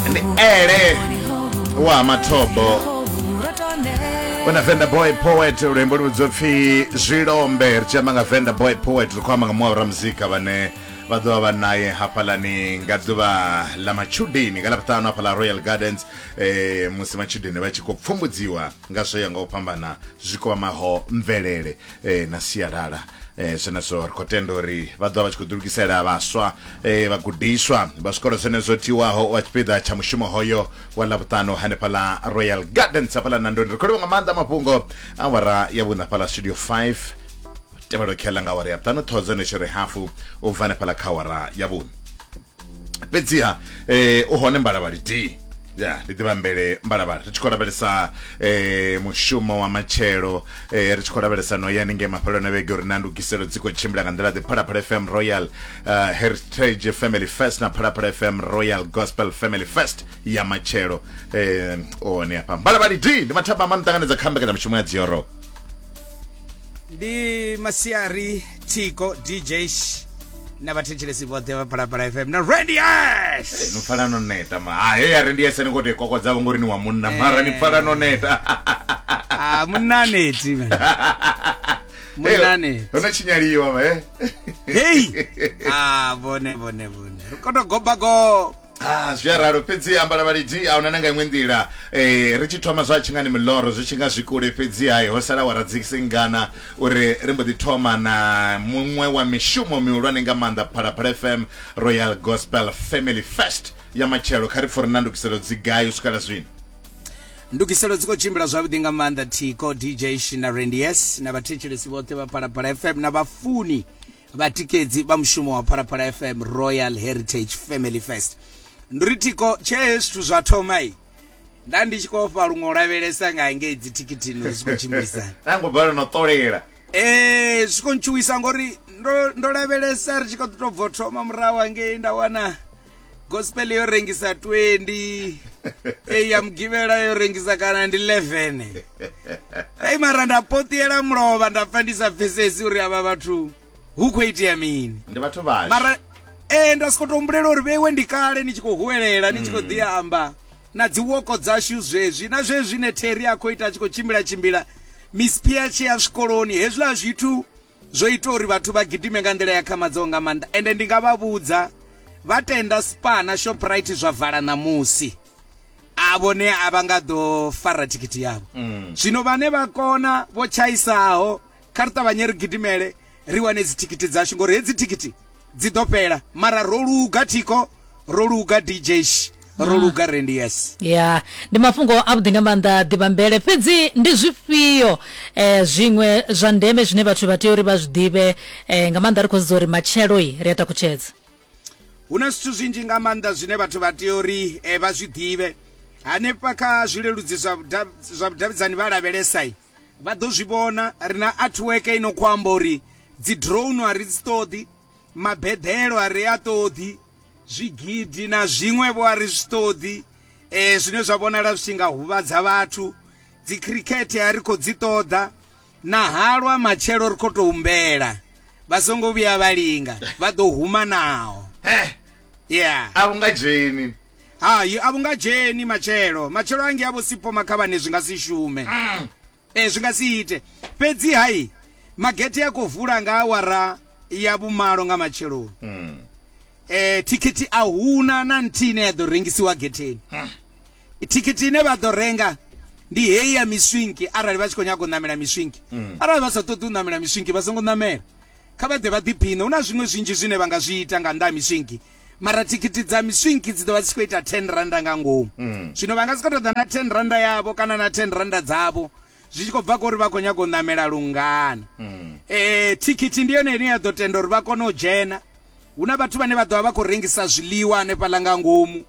ndi ele wa mathobo una venda boy poet luimbo lu vhidzwa pfhi zwilombe ri tshi amba nga venda boy poet ri khou amba nga muṅwe wa ramuzika vhane vha ḓo vha vha naye hafhalani nga ḓuvha ḽa matshudeni nga ḽa vhuṱanu hafha ḽa royal gardens eh, musi matshudeni vha tshi khou pfumbudziwa nga zwo ya nga u fhambana zwi kwamaho mvelele eh, na sialala eh, zwenezwo ri khou tenda uri vha ḓo vha tshi khou ḓilugisela vhaswa eh, vhagudiswa vha zwikolo zwenezwo tiwaho wa tshipiḓa tsha mushumo hoyo wa ḽavhuṱanu hanefha ḽa royal gardens hafhaḽa nandoni ri khou livha nga maanḓa mafhungo awara ya vhuṋa fhaḽa studio 5 tevhelo khela nga awara ya ṱanu thodzo netshore hafu u bva hanefhaḽa kha awara ya vhuṋa fhedziha eh u hone mbalavhali d ya ndi ḓivha mbele mbalavhali ri tshi khou lavhelesa eh mushumo wa matshelo eh ri tshi khou lavhelesa no ya ninge mafheloni a vhege uri na ndugiselo dzi khou tshimbila nga nḓila ḓe phalaphala fm royal uh, heritage family fest na phalaphala fm royal gospel family fest ya matshelo eh one hafha mbalavhali d ndi mathaba a mamu ṱanganedza kha mbekanyamushumo ya dzioro ndi masiari tiko dj na vhathetshelesi vhoṱhe vha phalaphala fm na randies no pfala no neta ma ha heya randies ni khou tou kokodza vho ngori ni wa munna mara ni pfala no neta a munaneti munaneti hu na tshinyaliwa ma he hei a vhone vhone vhone ri koto gobagoba Ah, zwi a ralo fhedzi ambala vhalidi ahuna na nga iṅwe nḓila eh, ri tshi thoma zwa tshingani miloro zwi tshi nga zwi kule fhedzi hai ho sala wara dzisingana uri ri mbo ḓi thoma na muṅwe wa mishumo mihulwane nga maanḓa phalaphala fm royal gospel family fest ya matshelo kha ri pfo ri na ndukiselo dzi gai u swikela zwino ndugiselo dzi khou tshimbila zwavhuḓi nga maanḓa thiko dj shina rendies na vhathetshelesi vhoṱhe vha phalaphala fm na vhafuni Vhatikedzi vha mushumo wa Phalaphala FM Royal Heritage Family First. Ndi ri thiko tshee zwithu zwa thoma i nda ndi tshi khou ofha luṅwe u lavhelesa nga ngei dzi thikithini uri zwi khou tshimbilisa. Nda ngo bala no ṱolela. Eh zwi khou ntshuwisa ngori ndo ndo lavhelesa ri tshi kha ḓi to bvo thoma murahu ngei nda wana gospel yo rengisa 20 eyi ya mugivhela yo rengisa kana ndi 11 ai mara nda potiela mulovha nda pfa ndi sa pfesesi uri avha vhathu hu khou itea mini ndi vhathu vhashu mara ee nda soko tombulela uri vheiwe ndi kale ni tshi khou huwelela ni tshi khou ḓi amba na dzi woko dzashu zwezwi na zwezwi ne theri a khou ita a tshi khou tshimbila tshimbila mispia tshi ya zwikoloni hezwiḽa zwithu Zwo ita uri vhathu vha gidime nga nḓila ya khamadzaho nga maanḓa ende ndi nga vha vhudza vha tenda Spar na Shoprite zwa vala ṋamusi a vhone a vha nga ḓo fara thikhithi yavho mm. zwino vhane vha kona vho tshaisaho kha ri ṱavhanye ri gidimele ri wane dzithikhithi dzashu ngori hedzi thikhithi Dzi ḓo fhela mara ro luga thiko ro luga dj ro luga rendi yes ya ndi mafhungo a vhuḓi nga maanḓa ḓivhambele fhedzi ndi zwifhio eh, zwiṅwe zwa ndeme zwine vhathu vha tea uri vha zwi ḓivhe eh, nga maanḓa ri khou sedza uri matshelo i ri a takutshedza hu na zwithu zwinzhi nga maanḓa zwine vhathu vha tea uri eh, vha zwi ḓivhe hanefha kha zwileludzi zwa vhuda- zwa vhudavhidzani vha lavhelesai Vha ḓo zwi vhona. Ri na artwork i no khou amba uri dzi drone a ri dzi ṱoḓi, mabeḓelo a ri a ṱoḓi, zwigidi na zwiṅwevho a ri zwi ṱoḓi um zwine zwa vhonala zwi tshi nga huvhadza vhathu dzi khirikhethe a ri khou dzi ṱoḓa na halwa matshelo ri khou tou humbela vha songo vhuya vha linga vha ḓo huma naho ya a u nga dzheni Hai, a vhu nga dzheni matshelo. Matshelo a ngea vho-Sipho Makhavhani zwi nga si shume. Ee, zwi nga si ite. Fhedzi-ha, magethe a khou vula nga awara ya vhumalo nga matsheloni. Thikhithi a hu na na nthihi ine ya ḓo rengisiwa getheni. Thikhithi ine vha ḓo renga ndi heyi ya miswinki arali vha tshi khou nyaga u ṋamela miswinki. Arali vha sa ṱoḓi u ṋamela miswinki vha songo ṋamela. Kha vha ḓe vha ḓiphiṋe. Hu na zwiṅwe zwinzhi zwine vha nga zwi ita nga nnḓa ha miswinki. mara thikhithi dza miswinki dzi ḓo vha dzi tshi khou ita 10 randa nga ngomu mm. zwino vha nga si khou tou ḓa na 10 randa yavho kana na 10 randa dzavho zwi tshi khou bva kori vha khou nyaga u ṋamela lungana um thikhithi ndi yone ine ya ḓo tenda uri vha kone u dzhena hu na vhathu vhane vha ḓovha vha khou rengisa zwiḽiwa hanefhaḽa nga ngomu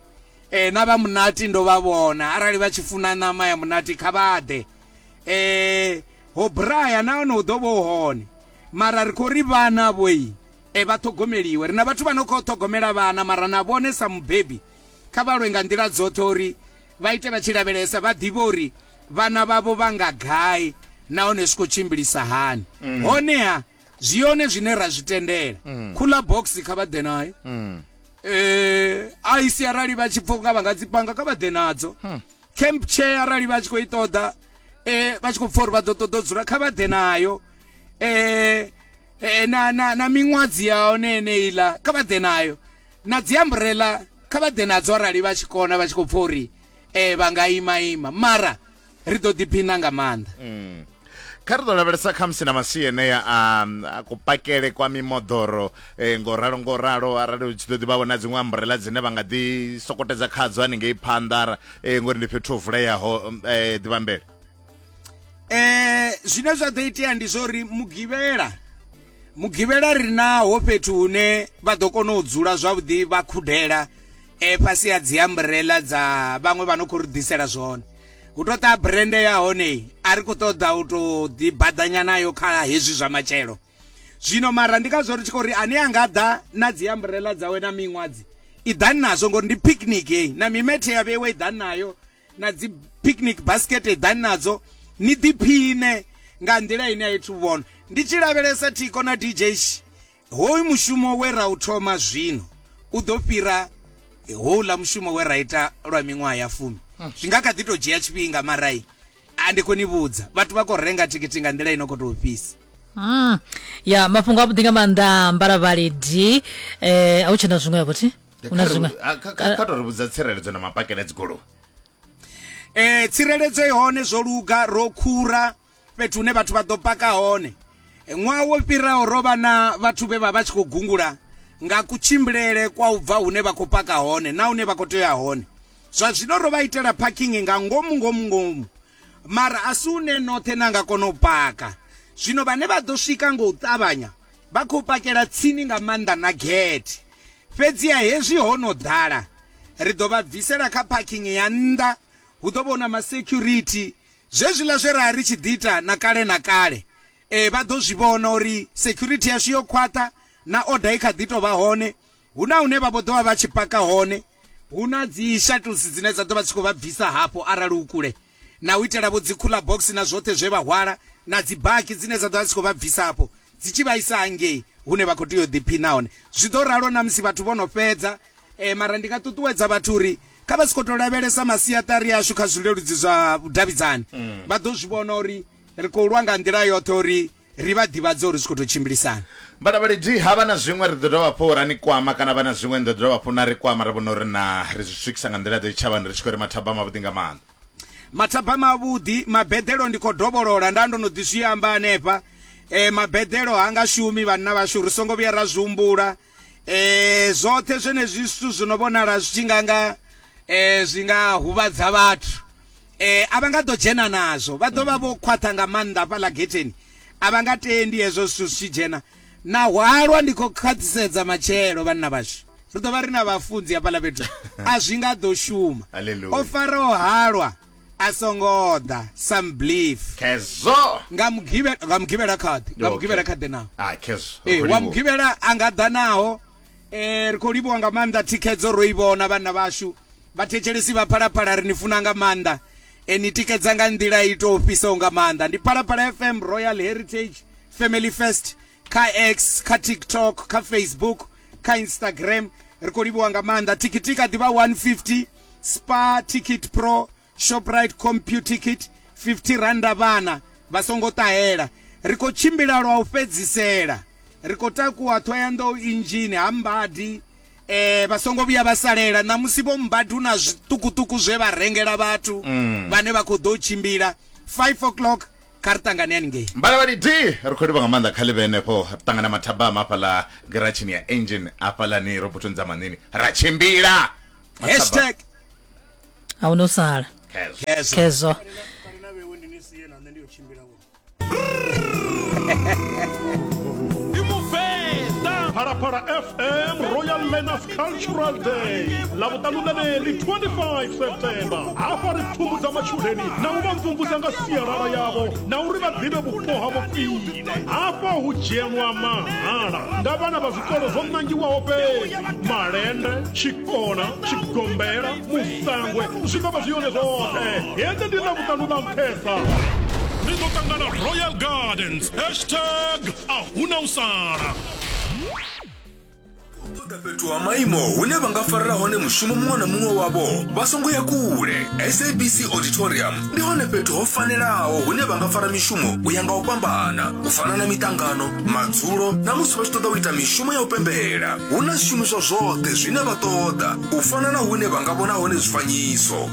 um na vha munati ndo vha vhona arali vha tshi funa ṋama ya munati kha vha ḓe um ho braya nahone hu ḓo vha u hone mara ri khou ri vhana vhoi E, vha ṱhogomeliwe. Ri na vhathu vha no khou ṱhogomela vhana, mara na vhone sa mubebi kha vha lwe nga nḓila dzoṱhe uri vha ite vha tshi lavhelesa, vha ḓivhe uri vhana vhavho vha nga gai nahone zwi khou tshimbilisa hani. Honeha, zwi hone zwine ra zwi tendela. Cooler box kha vha ḓe nayo. E, ice arali vha tshi pfa unga vha nga dzi panga, kha vha ḓe nadzo. Camp chair arali vha tshi khou i ṱoḓa, e, vha tshi khou pfa uri vha ḓo ṱoḓa u dzula, kha vha ḓe nayo. E, e, na, na, na miṅwadzi ya hone yeneiḽa kha vha ḓe nayo na dzi ambrela kha vha ḓe nadzo arali vha tshi kona vha tshi khou pfa uri um vha nga ima ima mara ri ḓo ḓiphina nga maanḓa mm. kha ri ḓo lavhelesa khamusi na masia enea a kupakele kwa mimoḓoro um ngo ralo ngo ralo arali u tshi ḓo ḓi vha vhona dziṅwe ambrela dzine vha nga ḓi sokotedza khadzo haningei phanḓa um ngori ndi fhethu ho vuleyaho um ḓivhambele eh zwine zwa ḓo itea ndi zwo ri mugivhela mugivhela ri naho fhethu hune vha ḓo kona u dzula zwavhuḓi vha khudela eh fhasi ya dzi umbrella dza vhaṅwe vha no khou ri ḓisela zwone hu to ṱa brand ya hone a ri khou ṱoḓa u to ḓi baḓanya nayo kha hezwi zwa matshelo zwino mara ndi kha zwo ri tshi khou ri ane a nga ḓa na dzi umbrella dzawe na miṅwadzi i ḓani nazwo ngori ndi picnic heyi na mimethe ya vheiwe i ḓani nayo na dzi picnic basket eḓani nadzo ni ḓiphine nga nḓila ine a ithu vhona ndi tshi lavhelesa thiko na dj hoyu mushumo we ra u thoma zwino u ḓo fhira houḽa mushumo we ra ita lwa miṅwaha ya fumi hmm. zwi nga kha ḓi tou dzhia tshifhinga marai a ndi khou ni vhudza vhathu vha khou renga thikhithi nga nḓila ino khou tou fhisa hmm. ya mafhungo a vhuḓi nga maanḓa mbalavhali d um eh, a hu tshena zwiṅwe yavhothi Hu na zwiṅwe- Kha- kha- kha- kha to ri vhudza tsireledzo na mapakele a dzigoloi eh tsireledzo i hone zwo luga ro khura fhethu hune vhathu vha ḓo paka hone Eh, ṅwaha wo fhiraho ro vha na vhathu vhe vha vha tshi khou gungula nga kutshimbilele kwa u bva hune vha khou paka hone na hune vha khou tea hone zwa zwino ro vha itela parking nga ngomu ngomu ngomu mara a si une noṱhe na nga kona u paka zwino vhane vha ḓo swika nga u ṱavhanya vha khou pakela tsini nga maanḓa na gate Fhedziha hezwi ho no ḓala, ri ḓo vha bvisela kha phakhing ya nnḓa, hu ḓo vha hu na masekhurithi. Zwezwiḽa zwe ra ri tshi ḓi ita na kale na kale, ee, vha ḓo zwi vhona uri sekhurithi yashu yo khwaṱha na oda i kha ḓi tou vha hone. Hu na hune vha vho ḓo vha vha tshi paka hone. Hu na dzi shuttles dzine dza ḓo vha dzi tshi khou vha bvisa hafho arali hu kule. na u itelavho dzikhuḽa bogisi na zwoṱhe zwe vha hwala, na dzibaki dzine dza ḓo vha dzi tshi khou vha bvisa afho dzi tshi vha isa hangei hune vha khou tea u ḓiphina hone. Zwi ḓo ralo na musi vhathu vho no fhedza. Mara ndi nga ṱuṱuwedza vhathu uri kha vha si khou tou lavhelesa masiaṱari ashu kha zwileludzi zwa vhudavhidzani, vha ḓo zwi vhona uri ri khou lwa nga nḓila yoṱhe uri. Ri vha ḓivhadze uri zwi khou tou tshimbilisana. Vhalavhaledi, Ha vha na zwiṅwe ri ḓo dovha hafhu ra ni kwama kana ha vha na zwiṅwe ni ḓo dovha hafhu na ri kwama ra vhona uri naa ri zwi swikisa nga nḓila-ḓe tshitshavhani ri tshi khou ri mathabama avhuḓi nga maanḓa. Mathabama avhuḓi, Mabeḓelo ndi khou dovholola, nda ndo no ḓi zwi amba hanefha, mabeḓelo ha nga shumi vhanna vhashu ri songo vhuya ra zwi humbula. E, zwoṱhe zwenezwi zwithu zwi no vhonala zwi tshi nga nga e, zwi nga huvhadza vhathu e, a vha nga ḓo dzhena nazwo vha ḓo vha vho khwaṱha nga maanḓa fhaḽa getheni a vha nga tendi hezwo zwithu zwi tshi dzhena na hwalwa ndi khou khwaṱhisedza matshelo vhanna vhashu ri ḓo vha ri na vhafunzi hafhaḽa fhethu a zwi nga ḓo shuma o faraho halwa A songo ḓa, some believe. Khezwo! Nga Mugivhela, nga Mugivhela kha ḓe, nga Mugivhela kha ḓe naho. Ah, khezwo. Ee, wa Mugivhela a nga ḓa naho. Eh, ri khou livhuwa nga maanḓa thikhedzo ro i vhona vhanna vhashu. Vhathetshelesi vha Phalaphala ri ni funa nga maanḓa. E ni tikedza nga nḓila i tou fhisaho nga maanḓa. Ndi Phalaphala FM Royal Heritage Family First. kha x kha tiktok kha facebook kha instagram ri khou livhuwa nga maanḓa thikhithi kha ḓivha 150 spa ticket pro shoprite computicket 50 randa vhana vha songo ṱahela ri khou tshimbila lwa u fhedzisela ri khou takuwa thoyandou injini ha mbadi eh vha songo vhuya vha salela ṋamusi vho mbadi hu na zwiṱukuṱuku zwe vha rengela vhathu mm. vhane vha khou ḓo tshimbila 5 o'clock kha ri ṱangane haningei mbalavhali d ri khou livha nga maanḓa kha ḽi vhe henefho ri ṱangana mathabama hafhaḽa giratshini ya engine hafhaḽani robotoni dza manini ra tshimbila Mathaba- hashtag a hu no sala Khezwo. khezwo khezwo Phalaphala FM Royal Learners cultural day ḽa vhuṱanunaneli 25 september hafha ri pfumbudza matshudeni na u vha mvumvusa nga sialala yavho na uri vha ḓivhe vhupo havho khwine hafha hu dzhenwa mahala nga vhana vha zwikolo zwo ṋangiwaho fhedzi malende tshikona tshigombela musangwe zwi ḓo vha zwi yone zwoṱhe hedzi ndi ḽa vhuṱanu ḽa nṱhesa ri ḓo ṱangana royal gardens hashtag a huna u sala ṱoḓa fhethu ha maimo hune vha nga farela hone mushumo muṅwe na muṅwe wavho vha songo ya kule sabc auditorium ndi hone fhethu ho fanelaho hune vha nga fara mishumo u ya nga u fhambana u fana na miṱangano madzulo na musi vha tshi ṱoḓa u ita mishumo ya u pembela hu na zwishumiswa zwoṱhe zwine vha ṱoḓa u fana na hune vha nga vhona hone zwifanyiso